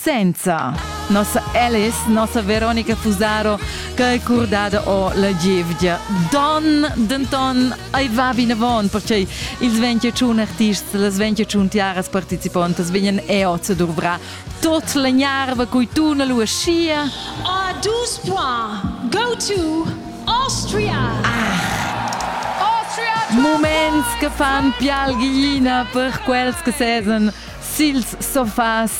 Senza nossa Alice, nossa Veronica Fusaro, che è curdada o la gievgia. Don, denton, ei va vinavon, perché ils 21 artists, las 21 tiaras participantas vegnan eoz a duvrar tot la gnarva cui tu na lu aschia. Ah, dus points. Go to Austria. Ah. Austria! Moments che fan pial ghiina per quels che sesan sils sofas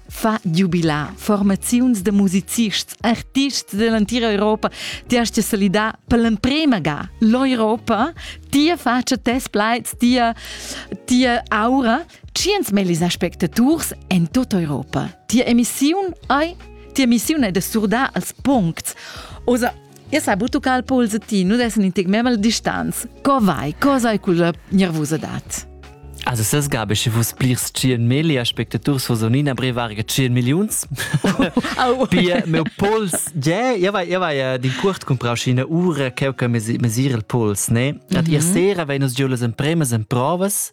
fa giubilar formaziuns da musicists, artists dell'entira Europa. Ti hast ja solidà per l'emprema ga l'Europa. Tia faccia, tes plaids, tia, tia aura. Tschient mellis aspectaturs en tutta Europa. Tia emissiun ei Tia missiun è da surdar als puncts. Osa E sai butucà al pols e ti nu dessen in tic memel distanz. Co vai? Co sei quella nervusa dat? Also sas gabe sche vus plirs 100 meli aspectaturs vos onina brevarga 100 milliuns. Pia meu pols ja ja vai ja vai din curt comprau schina ura cheu che mesir il pols ne. At ihr sera veinos giulas en premas en provas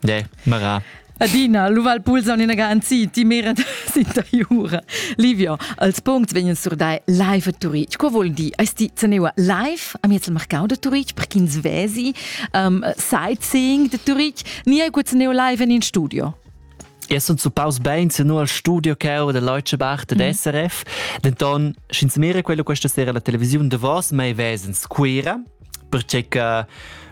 De, mera. Adina, luval pulsa in ina anzi, ti mera sintajura. Livio, als punct vegnan sur dai live a Turitg. Qua vuol dir, eis ti zaneua live am jetzt marcau da Turitg per ch'ins vesi um, sightseeing de Turitg? Ni hai quet zaneu live in in studio? Es uns zupaus bein se no al studio cau da Leuchebach de mhm. SRF. Denton, sch'ins mira quello questa sera la televisiun de vos, mai vesens Quera, perché che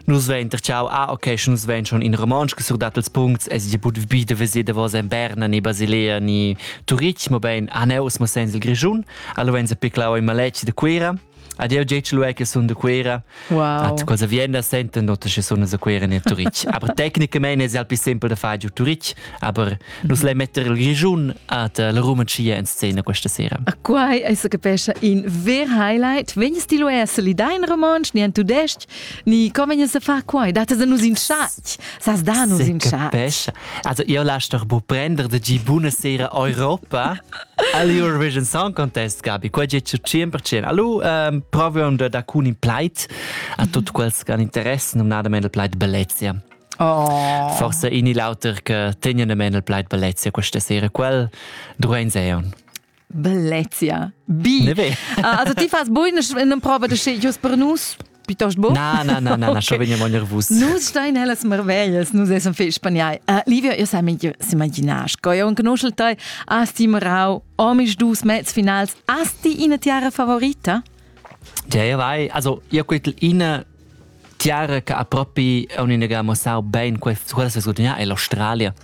nus vein terciau ah okay schon nus vein schon in romansch gesurdat als punts es ich bud bi de vese de was en Berna ni Basilea ni Turitg mo bein aneus mo sens il Grischun allo venza piclau in maleci de Cuira Ad eu gec lu che sun de Cuera. Wow. At cosa vien da senten, dot che sun de Cuera nel Turitg. aber tecnicamente es alpi simpel de far giu Turitg, aber Nus lei metter il Grischun at la Rumancia in scena questa sera. A quai è se capescha in ver highlight. Vegnes ti lo er se li dai in romansch, ni en tudesc, ni co vegnes a far quai? Datas a nus in schat. Sas da nus in schat. Capescha. Also, io lass doch bu prender de gi buna sera Europa al Eurovision Song Contest, Gabi. Qua è 100%. Allora, um, proviamo da cun in pleit a tutti quels che hanno interesse, non nada il pleit Bellezia. Oh. Forse in il auter che tenien men il plaid bellezia questa sera quel druein seon. Bellezia. Bi. Ne ve. Ah, also ti fas buin in prova de sche jus per nus piuttosto bo? Na, na, na, na, okay. schon vegno nervus. Nus stein hellas marvellas, nus essam fei spagnai. Uh, Livio, io sai s'imaginas, co io conoscel te, asti Marau, omis dus mezz finals, asti ina tiara favorita? Ja, ja, vai, also, io quel ina Tiara che ha propi on inaga muossau bein quellas che gudagnà è l'Australia.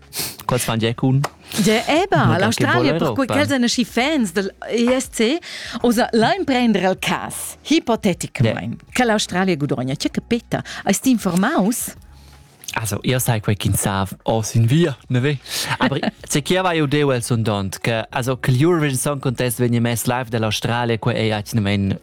Quals fan gia cun? Ja, eba, l'Australia, perquei quels èn aschi fans del ESC, osa lain prender al cas, hipoteticamain, yeah. che l'Australia gudogna. Tge che Peter, hast ti informaus? Also, io sai quei ch'in sav o sin via, ne ve? Aber se chi ava io deu el sondont, che also che l'Eurovision Song Contest vegni mess live dall'Australia, quei ei atgnamein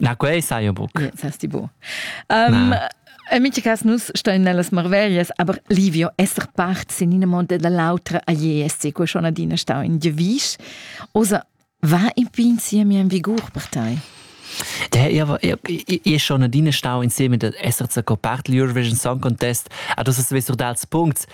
Na, quei sai io buc. Ja, sas ti bu. Um, En mitg cas nus stein nellas marverias, aber Livio esser part sin in monte dall'autra a Jesse, co schon adina stau in Gevisch. Osa va in pin siemi en vigur per tai? Der ist schon adine stau insieme mit der SRC Copart Eurovision Song Contest, ah, das ist wesser dals Punkt.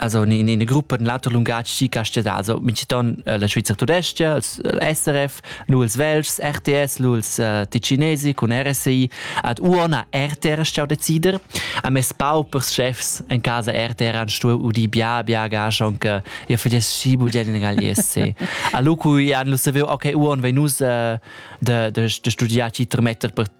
Also in ina gruppa in l'auter lungatg chi castellà, also minciton uh, la Svizzera tudescha, il SRF, nu ils Velschs, RTS, nu ils uh, Ticinesi cun RSI, ad uona RTR stau decider. A mes pau per chefs in casa RTR han stu udi bia bia gascha anche ja fages si budien in Galliesse. A lucu jan lu saviu okay uon venus uh, de de de studiar ci tremetter per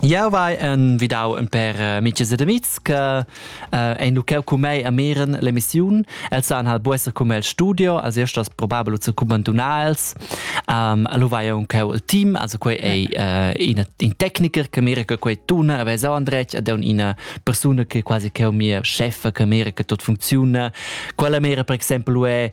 Jau vai envidau in per uh, amiches ed amics che uh, ein lucau cu mei a miren l'emissiun. Els han hal buesser cum el studio, als erstas probabel zu cubantunar els. Um, lu vai aunc il team, also quei ei uh, ina in tecniker che mira che quei tuna, a vesa andretg ed un ina persona che quasi che o mia chef che mira che tot funziona. Quella mira per exempel è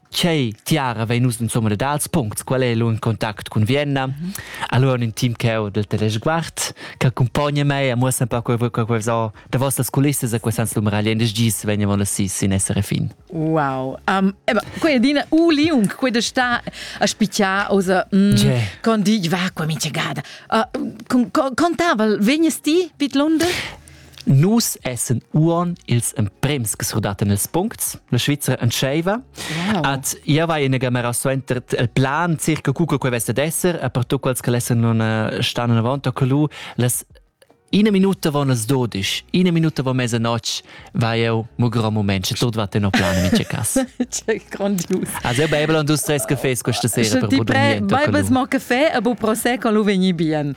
Che tiara vein nus insomma dals puncts, qual è l'un contact cun Vienna. Mm -hmm. Allora un team cheu del Teleguard che accompagna me e muossa un po quel qualcosa da vostras culisse a quest'anno numerali des gis veniamo la sis in essere fin. Wow. Um, eba, quella dina u liung, quella sta a spicchia osa mm, con di va qua mince gada. Uh, contava, vegnes ti vid Lunde? Nus essen uon ils emprems che surdaten ils puncts. La Svizzera entscheiva. Wow. At ia vai ina gamera suenter il plan circa cuca quei vesta d'esser, a per tu quels che lessen non eh, stan avant a colu, las Ina minuta von las dodisch, ina minuta von mesa notg, vai eu mo gro moment, che tot wat no plan in cas. Che grandius. Also eu beible und dus tres cafés questa sera per Ti pre, beibles mon café e bu procès con lu vegni bien.